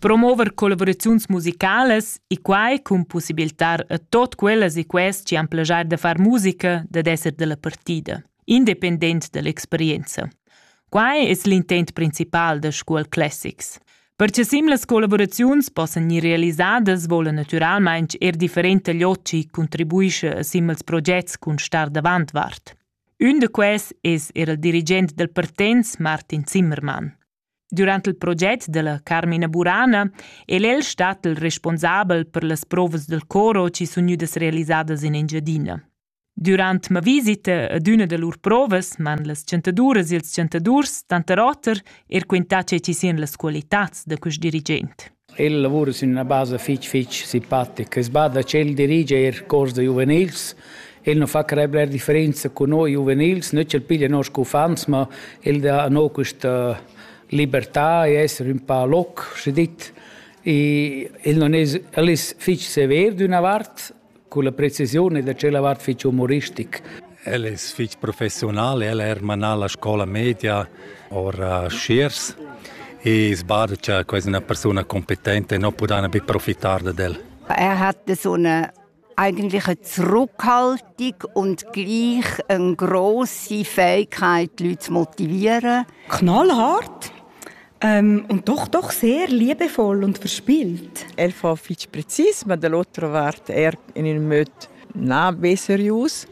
Promover collaboraziuns musicalas e quai cun possibilitar a tot quellas e quest che han plegiar da far musica dad esser della partida, independent dall'experienza. Quai es l'intent principal da Scuol Classics. Perche sim las collaboraziuns possan gnir realisadas vola natüralmaing er differente loci contribuisce a simils progets cun star davant vart. Ün da quels es eir il dirigent dal Partenz Martin Zimmermann. Durant il proget da la Carmina Burana el el stat il responsabel per las provas dal coro chi sun gnüdas realisadas in Engiadina. Durant ma visita ad üna da lur provas m'han las chantaduras e ils chantadurs tanter oter er quintà che chi sian las qualitats da quist dirigent. El lavura sün üna basa fich fich simpatica. As bada ch'el dirigia eir cors da giuvenils. El nu fa crair bler differenza cun noi giuvenils, na ch'el piglia noss uffants, ma el dà a no quista libertà e esser ün pa loc, schi dit. I el non es el es fich sever d'üna vart Culla precisiun ed a tschella vart fich umoristic. El es fich professional, el ha er manà la scoula media ora a Schiers e sbada cha quasi üna persuna competente non pudana be profitar dad el. Er hat so eine eigentlich zurückhaltung und gleich eine grosse Fähigkeit, die Leute zu motivieren. Knallhart. Ähm, und doch, doch sehr liebevoll und verspielt. El fa fitg precis, ma dall'otra vart er in ün möd na be serius.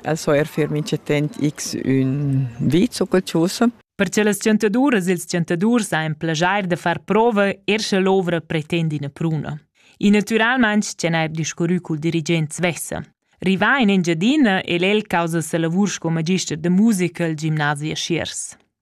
Also er für mich attent x un vizo cultuso. Per che las chantaduras e ils chantadurs ein plageir da far prova er sche l'ovra pretend ina pruna. E naturalmente che n'ha discurrü col dirigent svessa. Rivà in Engiadina è el causa sa lavur sco magister de musica al gimnasia Schiers.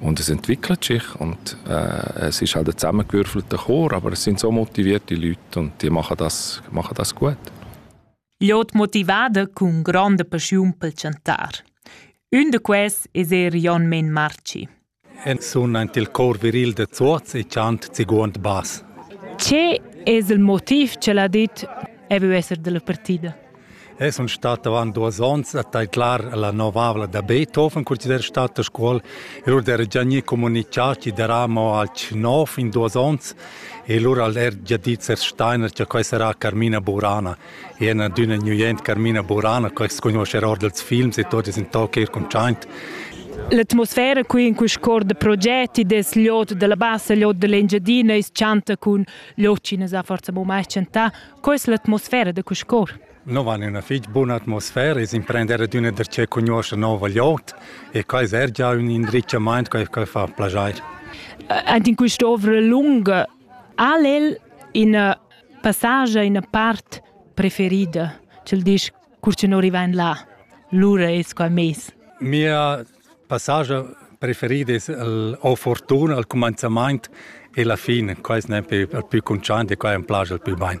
Und es entwickelt sich und äh, es ist halt ein zusammengewürfelter Chor, aber es sind so motivierte Leute und die machen das, machen das gut. Jod motivada cun gronda paschiun pel chantar. Un de quels es er Jon Men Marci. En sun aint il cor viril de Zuoz e chant ziguond bas. Ce es il motiv che l'ha dit e vu esser della partida? Eu sun stat avant duos ons a taidlar la novavla da Beethoven, consider stat a Scuol. E lur d'era già gnü comunichà chi darà mo alch nov in duos ons e lura al er già dit Sers Steiner cha quai sarà Carmina Burana. E ena d'üna gnüent Carmina Burana, quai s'cugnuoscha er or dels films e tot es in toc eir cuntschaint. L'atmosfera qui in quist cor de progetti des l'ot de la bassa, l'ot de l'Engiadina, is chanta cun l'ot chi ne sa forza mo mai chantà, Co es l'atmosfera da Cuscor? No van üna fich buna atmosfera, es imprender ad üna da che cugnuoscha nouva gliout e quai es eir già ün indrizchamaint che fa plaschair. Ant in quest'ovra lunga al el ina passage ina part preferida, cel disch cur che non riva in là. Lura es qua meis. Mia passascha preferida es el o fortuna al cumanzamaint e la fin. Quai es nempe il pü cuntschaint e quai am plaja il pü bain.